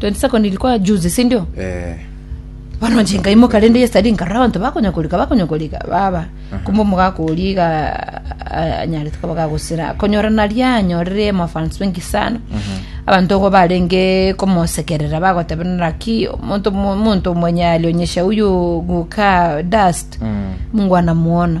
22nd ilikuwa juzi si ndio eh, bono nche nkaimoka rende yesterday nkarora abanto bakonya korika bakonya korika baba kumbe omogaka oria iga a- anyarete koba gagosira konyora naria anyorire amafans bengi sana abanto ogo barenge komosekerera bagoteba naraki omonto omo- omonto omwenye alionyesha uyu guka dust mm. mungu anamuona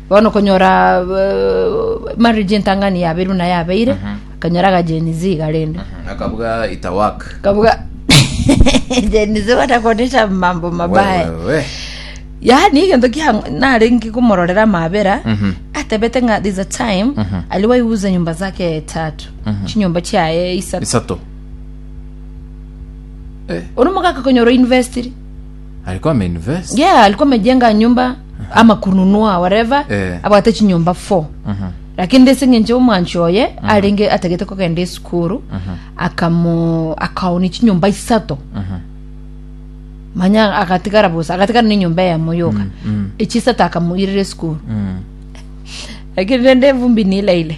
Bono okonyora eh, marriage entang'ani yabeire buna yabeire akanyora agajenizi iga rende akabuga itawak kabuga jenizi batakonesha mambo mabaya Wewe. yaani egento kia narenge komororera mabera Mhm. atebete ng'a there's a time ali waiuza nyumba zake tatu chinyumba chiaye isato isato ori omogaka konyora university Alikuwa ameinvest. yeah alikuwa amejenga nyumba ama kununua whatever Eh. abwate chinyumba four Mhm. lakini ndese ng'enche omwanchi oye arenge atagete kogenda esukuru akamo akaoni chinyumba isato Mhm. manya agatigara bosa agatigara nenyumba eyemo yoka Mm, mm. echisato akamoirera esukuru Mm. lakini rende evumbi nilaile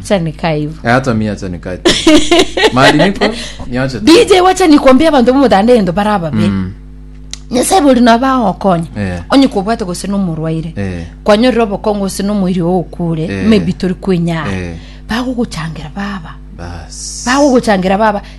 acha nikaa hivyo Eh, hata mi acha nikae tu. mahali niko niache tu. dj wacha nikwambia abanto bomotanda egento bara ababe Mm, nyasae bori nabo agokonya Eh. onye kobwate gose nomorwaire eh, kwanyorera obokongo gose nomoiri ogokure Eh. maybe tori kwenyara Eh. bagogochangera baba bas bagogochangera baba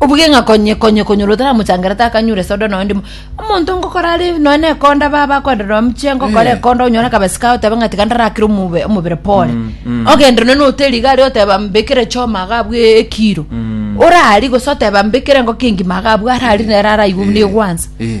Obuge ng'a konye konye konyora otaramochangerereria takanyure soda nonya ndimo. Omonto ngokora are nonya na ekonda ba bakwenda nonya mchie ngokora Eh. ekonda onyore akabesi kaye otebe ng'a tiga ndarakire omobere omobere pore. Mm, mm. Ogende nonya na hoteli iga aria oteba mbekere choma iga abwo e- ekiro. Mm. Orari gose oteba mbekere engoko engima iga abwo arari nere araigwe buna Eh, egwansa. eh.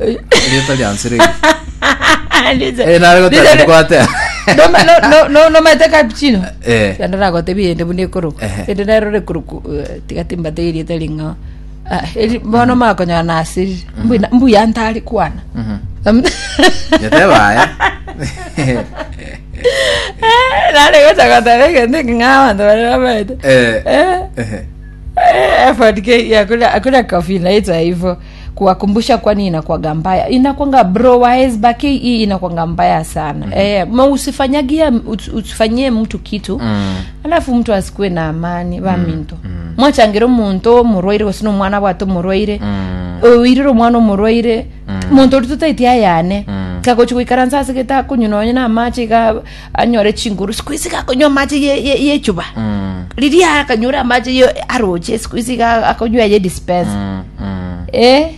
Erieta riansire eri. Ndiche- Eh, nare goteba Ndiche- ndikwatea. No- no- no- no- nomaete cappuccino Eh. yanda nagotebi yende buna ekoro Ehe. ende nero rekuruku tiga timbate erieta ring'ao Ah, eri- bono makonyora nasirire Mbwina- mbuya ntari kwana Mhm. Am- Yateba aya. nare gocha goteba egento eking'ao abanto bare bamaete Eh. Eh, Ehe. eh, effort ke- ya kuria- kuria coffee naitwa hivyo kuwakumbusha kwani inakwanga mbaya inakwanga bro wa hesba ke inakwanga mbaya sana mm. eh, ma usifanyagia us- usifanyie mtu kitu mm. alafu mtu asikue na amani baminto mm. mwachangira omonto omorwaire gose nomwana bwate omorwaire mm. oirire omwana omorwaire mm. monto ori totaiti ayane mm. kagochi goikaransa ase gete akonywa nonye na amache iga anyore chinguru siku isi gakonywa amache ye- ye- yechuba riria akanyora amache ye aroche siku isi ga- akonywa eye dispensa Mm, mm. eh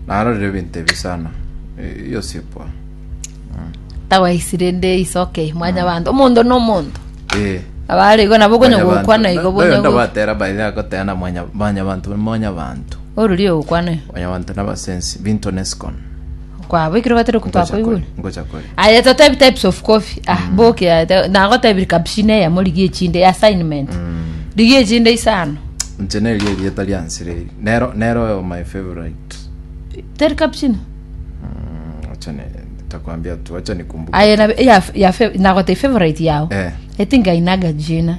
naro rero ebinto ebi sana Eh, iyo sipwa tawaisi rende is okay mwanya bantu omonto no omonto Eh, abare igo nabo okonya mwanyabantu. gokwana igo Na- bonya nayo ndabatera baire agoteana mwanya- mwanyabantu mwanyabantu orori ogokwana igo mwanyabantu nabasensi binto nesikon Kwabwekire obate roko Ngocha kore, twakoigure. ngocha kore. Aye totebi types of coffee. Ah, boki aye te- nagotebiri cappuccino eyemo rigia echinde ya assignment. Rigia echinde isano. Inche neri erieta riansire eri. Nero nero oyo my favorite. Teri cappuccino. Mm, Acha ne nitakwambia tu, acha nikumbuke. Aye na ya ya fe- nagotebia favorite yao. Eh. Etinga inaga jina.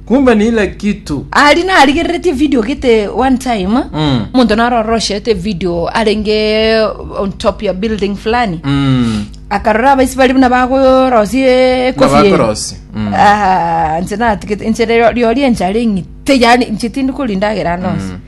kumbe ni ile kitu ari narigereretie video gete one time Mm. omonto naroroshete video arenge on top ya building fulani Mm. akarora abaisi bari buna bagorosie ekofi eye. Nabakorosi. Mm. Ah, nse natigete nse rio- riori enchara eng'ite yani nche tindi kori ndagera nonsi